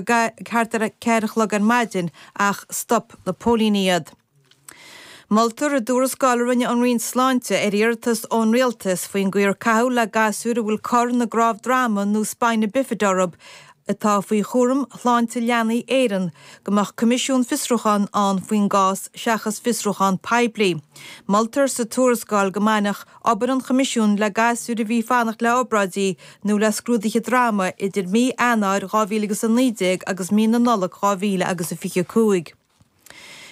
thart ar a ceathair a chlog ar maidin ach stop na póilíní iad. Moltar i dtuarascáil a rinne an Roinn Sláinte ar iarratas ón Rialtas faoin gcaoi ar caitheadh le gasúir a bhfuil cor ina gcnámh droma nó spina bifida orthu atá faoi chúram Shláinte Leanaí Éireann go mbeadh coimisiún fiosrúcháin ann faoin gcás seachas fiosrúchán poiblí. Moltar sa tuarascáil go mbainfeadh. obair an Choimisiúin le gasúir a bhí ag fanacht le obráidí nó le scrúduithe droma idir mí Eanáir 2000 agus 19 agus mí na Nollag 2000 agus a 25.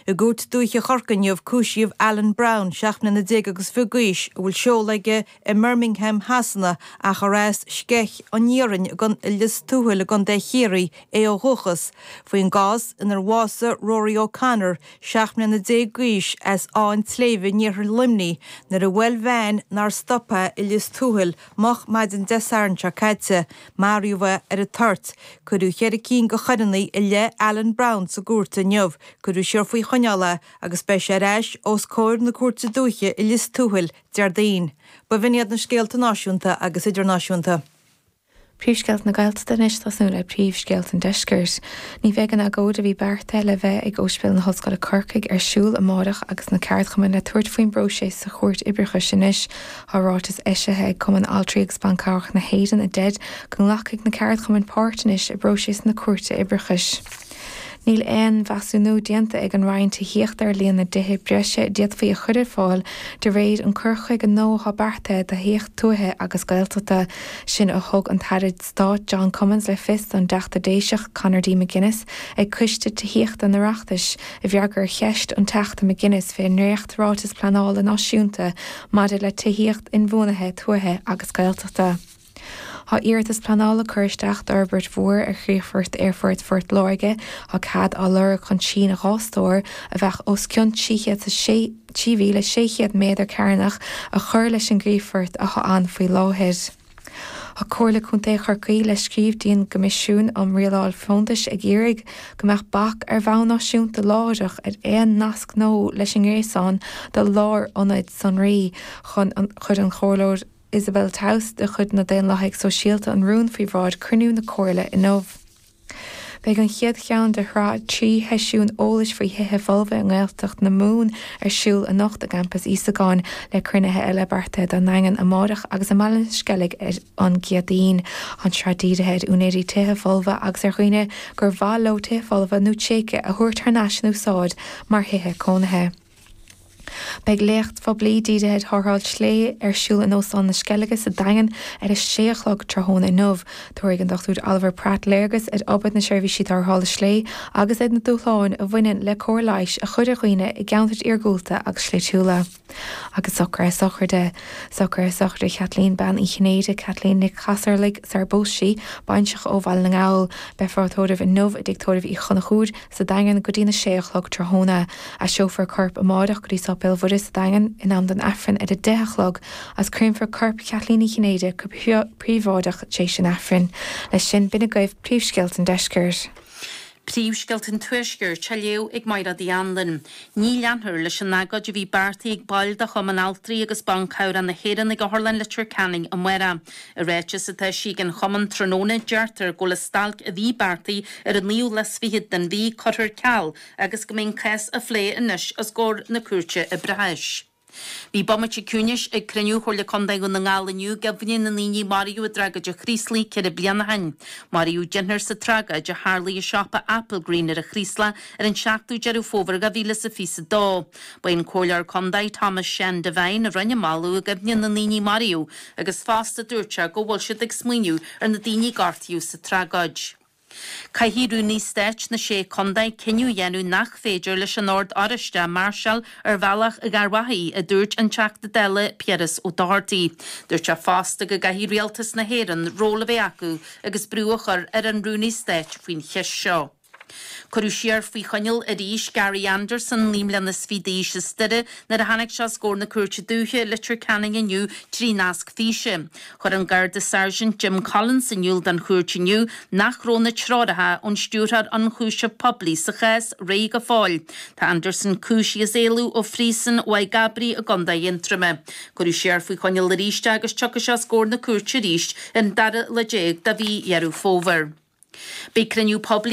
I gCúirt Dúiche Chorcaí inniu cúisíodh Alan Brown, 17 mbliana agus fiche d'aois, a bhfuil seoladh aige i mBirmingham Shasana ach ar as Sceich an Iarainn Egan i Lios Tuathail i gContae Chiarraí é ó dhúchas, faoin gcás inar bhásaigh Rory O'Connor, seacht mbliana déag d'aois, as Áth an tSléibhe in iarthar Luimnigh, nuair a bhuail veain nár stop é i Lios Tuathail moch maidin Dé Sathairn seo caite. Maraíodh é ar an toirt. Cuireadh ceithre cinn de choireanna i leith Alan Brown sa gcúirt inniu. Cuireadh siar faoi choinneáil é agus beidh sé ar ais os comhair na Cúirte Dúiche i Lios Tuathail Déardaoin. Ba shin iad na scéalta náisiúnta agus idirnáisiúnta. Príomhscéalta na Gaeltachta anois ag tosnú le príomhscéalta an Deiscirt. Ní bheidh an agóid a bhí beartaithe le bheith ag Óispidéal na hOllscoile Corcaigh ar siúl amárach agus na ceardchumainn le tabhairt faoin bpróiseas sa Chúirt Oibreachais anois tá ráiteas eisithe ag Cumann Altraí agus Ban Cabhrach na hÉireann a deir go nglacfaidh na ceardchumainn páirt anois i bpróiseas na Cúirte Oibreachais. Níl aon mheasúnú déanta ag an Roinn Tithíochta ar líon na dtithe breise a d'fhéadfaí a chur ar fáil de réir an cur chuige nua atá beartaithe do thithíocht tuaithe agus Gaeltachta. Sin a thug an tAire Stáit John Cummins le fios don dTeachta Déiseach Conor D McGuinness ag Coiste Tithíochta an Oireachtais i bhfreagra ar cheist an Teachta McGuinness fén ndréacht Ráiteas Pleanála Náisiúnta maidir le Tithíocht Inbhuanaithe Tuaithe agus Gaeltachta. Tá iarratas pleanála curtha isteach d'fhorbairt mhór ar chríochfort Aerfort Phort Láirge, tá cead á lorg chun síneadh dhá stór, a bheadh os cionn 3,600 méadar cearnach, a chur leis an gcríochfort atá ann faoi láthair. Tá Comhairle Contae Chorcaí, le scríobh dtí an gCoimisiún um Rialáil Fóntais, ag iarraidh go mbeadh bac, ar bhonn náisiúnta láithreach, ar aon nasc nua leis an ngréasán do lárionaid sonraí chuir an Isabel Towse de chuid na Daonlathaigh Sóisialta an rún faoi bhráid chruinniú na Comhairle inniu. Beidh an chéad cheann de shraith trí sheisiún eolais faoi thithe folmha i nGaeltacht na Mumhan ar siúl anocht i gCampas Íosagáin, le cruinnithe eile beartaithe don nDaingean amárach agus i mBaile an Sceilg ar an gCéadaoin. An tsraith dírithe ar úinéirí tithe folmha agus ar dhaoine gur mhaith leo tithe folmha nó tréigthe a thabhairt thar n-ais in úsáid mar thithe cónaithe. Beidh léacht phoiblí dírithe ar tharrtháil sléibhe ar siúl in Óstán na Sceilge sa Daingean ar a sé a chlog tráthnóna inniu. Tabharfaidh an Dr Oliver Pratt léargas ar obair na Seirbhísí Tarrthála Sléibhe agus ar na dúshláin a bhaineann le cóir leighis a chur ar dhaoine i gceantair iargúlta agus sléibhtiúla. Agus socruithe sochraide, socruithe sochraide Chaitlín Bean Uí Chinnéide, Caitlín Nic Casarlaigh sara bpós sí, baintreach ó Bhaile na nGall, beifear á tórramh inniu i dTigh Tórraimh Uí Chonchúir, sa Daingean go dtí na sé a chlog tráthnóna. Aistreofar a corp amáireach go dtí Sáipéal Mhuire sa Daingean in am don Aifreann ar a deich a chlog agus créamfar corp Cheaitlín Uí Chinnéide go príobháideach t'éis an Aifrinn. Leis sin b'in agaibh príomhscéalta an Deiscirt. Príomhscéalta an Tuaiscirt á léamh ag Maighread Uí Anluain. Ní leanfar leis an agóid a bhí beartaithe ag baill de Chumann Altraí agus Ban Cabhrach na hÉireann ag Otharlann Leitir Ceanainn amáireach. I ráiteas atá eisithe ag an chumann tráthnóna, deirtear go bhfuil an stailc a bhí beartaithe ar an naoú lá 's fichead den mhí curtha ar ceal agus go mbeidh an cás á phlé anois os comhair na Cúirte Oibreachais. Bhí bomaite ciúnais ag cruinniú Chomhairle Contae Dhún na nGall inniu i gcuimhne na ndaoine a maraíodh i dtragóid an Chraoslaigh ceithre bliana ó shin. Maraíodh deichniúr sa tragóid a tharlaigh i siopa Applegreen ar an Chraoslach ar an 7ú Deireadh Fómhair dhá mhíle 's a fiche 's a dó. Ba é an Comhairleoir Contae Tomás Seán Devine a rinne an moladh i gcuimhne na ndaoine a maraíodh, agus fosta dúirt sé go bhfuil siad ag smaoineamh ar na daoine a gortaíodh sa tragóid. Caithfidh Rúnaí Stáit na Sé Chontae cinneadh a dhéanamh nach féidir leis an Ord Oráiste máirseáil ar Bhealach Gharbhachaidh, a dúirt an Teachta Dála Piaras Ó Dochartaigh. Dúirt sé fosta go gcaithfidh Rialtas na hÉireann ról a bheith acu agus brú a chur ar an Rúnaí Stáit faoin cheist seo. Cuireadh siar faoi choinneáil arís Gary Anderson naoi mbliana is fiche d'aois as Doire nuair a tháinig sé os comhair na Cúirte Dúiche i Leitir Ceanainn inniu trí nasc físe. Chuir an Garda Sergeant Jim Collins in iúl don chúirt inniu nach raibh na treoracha ón Stiúrthóir Ionchúiseamh Poiblí sa chás réidh go fóill. Tá Anderson cúisithe as éalú ó Phríosún Mhaigh gCabraí i gContae Aontroime. Cuireadh siar faoi choinneáil arís é agus tiocfaidh sé os comhair na cúirte arís ar an dara lá déag de mhí Dheireadh Fómhair. Beidh cruinniú poiblí